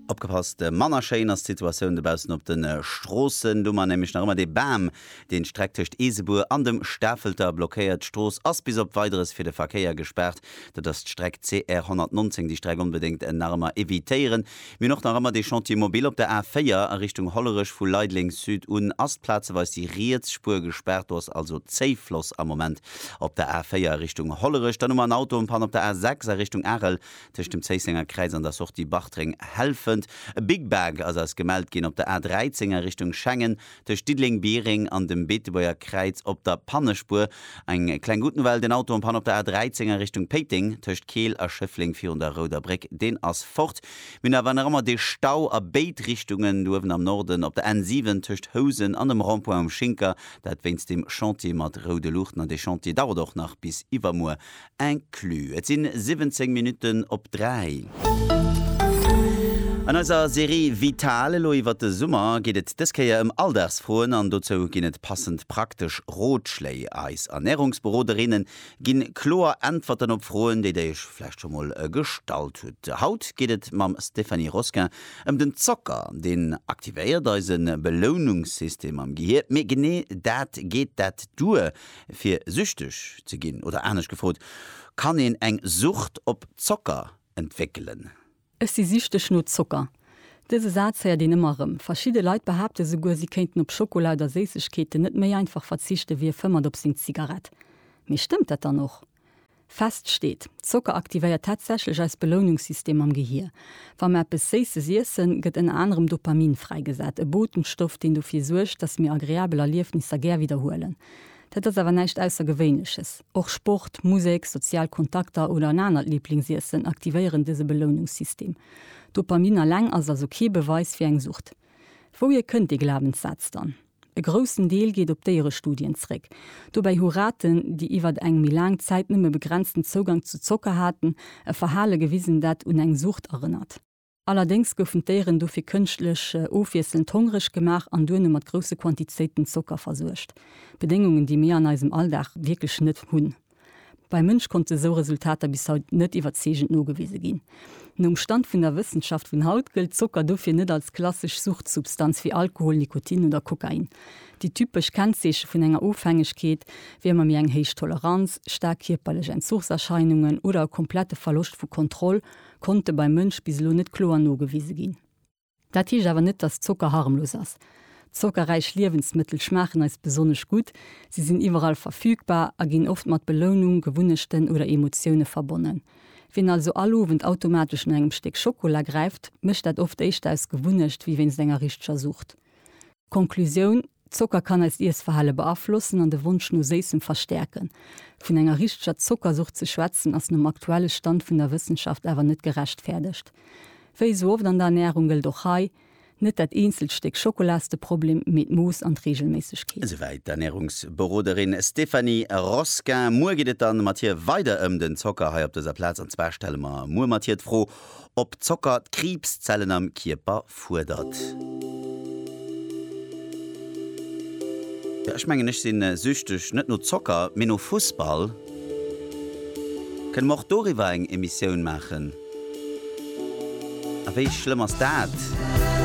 Opgepasst, manner schéin ass d'Situatioun dobaussen op de Stroossen. Do mar nämlech nach ëmmer dee Bam, deen d'Streck tëscht Eesebuer an dem Stafelter blockéiert. D'Strooss ass bis op Weideres fir de Verkéier gespaart. Dat ass d'Streck CR 119. Déi Streck onbedéngt nach ëmmer evitéieren. Mir hunn och nach ëmmer dee Chantier mobile op der A4 a Richtung Hollerech. Vu Leideleng Sud un ass plazeweis déi riets Spuer gespaart. Do ass also Zéifloss am Moment op der A4 a Richtung Hollerech. Dann hu mer en Auto en panne op der A6 a Richtung Arel. Tëscht dem Zéissenger Kräiz an der Sortie Bartreng, Helfent. E Big Bag ass eis gemellt ginn op der A 13 a Richtung Schengen, tëscht Diddeleng, Biereng an dem Beetebuerger Kräiz op der Pannespuer. Eng kleng Good Nouvelle, den Auto am Panne op der A 13 a Richtung Péiteng, tëscht Keel a Schëffleng virun der Rouder Bréck, deen ass fort. Mir hunn awer nach ëmmer dee Stau a béid Richtungen, do uewen am Norden op der N 7 tëscht Housen an dem Rond-point um Schinker, dat wéinst dem Chantier mat roude Luuchten. An dee Chantier dauert och nach bis iwwermuer Inclus. Et sinn 17 Minutten op 3. An eiser Serie Vital elo iwwert de Summer geet et dës Kéier ëm Alldagsfroen an dozou ginn et passend praktesch Rotschléi. Eis Ernärungsberoderinne ginn kloer Äntwerten op Froen, déi der iech vläicht scho mol gestallt hutt. Haut geet et mam Stéphanie Rosquin ëm den Zocker. Deen aktivéiert eise Belounungssystem am Gehier. Mee genee dat, geet dat duer? Fir süchteg ze ginn? Oder anescht gefrot, Kann een eng Sucht op Zocker entwéckelen? Ech si süchteg no Zocker. Dëse Saz héiert een ëmmer erëm. Verschidde Leit behaapte souguer, si kéinten op Schokola oder Séissegkeeten net méi einfach verzichten, wéi e fëmmert op seng Zigarett. Mee stëmmt dat dann och? Fest steet, Zocker aktivéiert tatsächlech eist Belounungssystem am Gehier. Wa mer eppes Séisses iessen, gëtt ënner anerem Dopamin fräigesat, e Botenstoff, deen dofir suergt, dass mir agreabel Erliefnisser gär widderhuelen. Dat ass awer näischt Aussergewéinleches. Och Sport, Musek, sozial Kontakter oder en anert Liblingsiessen aktivéieren dëse Belounungssystem. Dopamin alleng ass also kee Beweis fir eng Sucht. Wouhier kënnt dee Glabenssaz dann? E groussen Deel geet op Déierestudien zréck. Dobäi hu Raten, déi iwwer eng méi laang Zäit nëmme begrenzten Zougang zu Zocker haten, e Verhale gewisen, dat un eng Sucht erënnert. Allerdéngs goufen d'Déieren dofir kënschtlech ofwiesselnd hongreg gemaach an duerno mat grousse Quantizéiten Zocker versuergt, Bedéngungen, déi mir an eisem Alldag wierklech net hunn. Beim Mënsch konnte esou Resultater bis haut net iwwerzeegend nogewise ginn. Nom Stand vun der Wëssenschaft vun haut gëllt Zocker dofir net als klassesch Suchtsubstanz wéi Alkohol, Nikotin oder Kokain. Déi typesch Kennzeeche vun enger Ofhängegkeet wier ëmmer méi eng héich Toleranz, staark kierperlech Entzuchserscheinungen oder e komplette Verloscht vu Kontroll konnte beim Mënsch bis elo net kloer nogewise ginn. Dat heescht awer net, dass Zocker harmlos ass. Zockerräich Liewensmëttel schmaachen eis besonnesch gutt, si sinn iwwerall verfügbar a ginn oft mat Belounung, Gewunnechten oder Emotioune verbonnen. Wien also all Owend automatesch no engem Stéck Schockola gräift, mécht dat oft éischter aus Gewunnecht wéi wéinst enger richteger Sucht. Konklusioun, Zocker kann eist Iessverhale beaflossen an de Wonsch no Séissem verstäerken. Vun enger richteger Zockersucht ze schwätzen ass nom aktuelle Stand vun der Wëssenschaft awer net gerechtfäerdegt. Wéi esou oft an der Ernärung gëllt och hei, Net dat eenzelt Stéck Schokola ass de Problem, mee d'Mooss an d'Reegelméissegkeet. Esouwäit d'Ernärungsberoderin Stéphanie Rosquin. Muer geet et dann mat hir weider ëm den Zocker hei op dëser Plaz. An zwar stelle mer muer mat hir d'Fro, Ob Zocker d'Kriibszellen am Kierper fuerdert? Ech mengen ech sinn süchteg, net no Zocker, mee no Fussball. Kënne mer och doriwwer eng Emissioun maachen? A wéi schlëmm ass dat?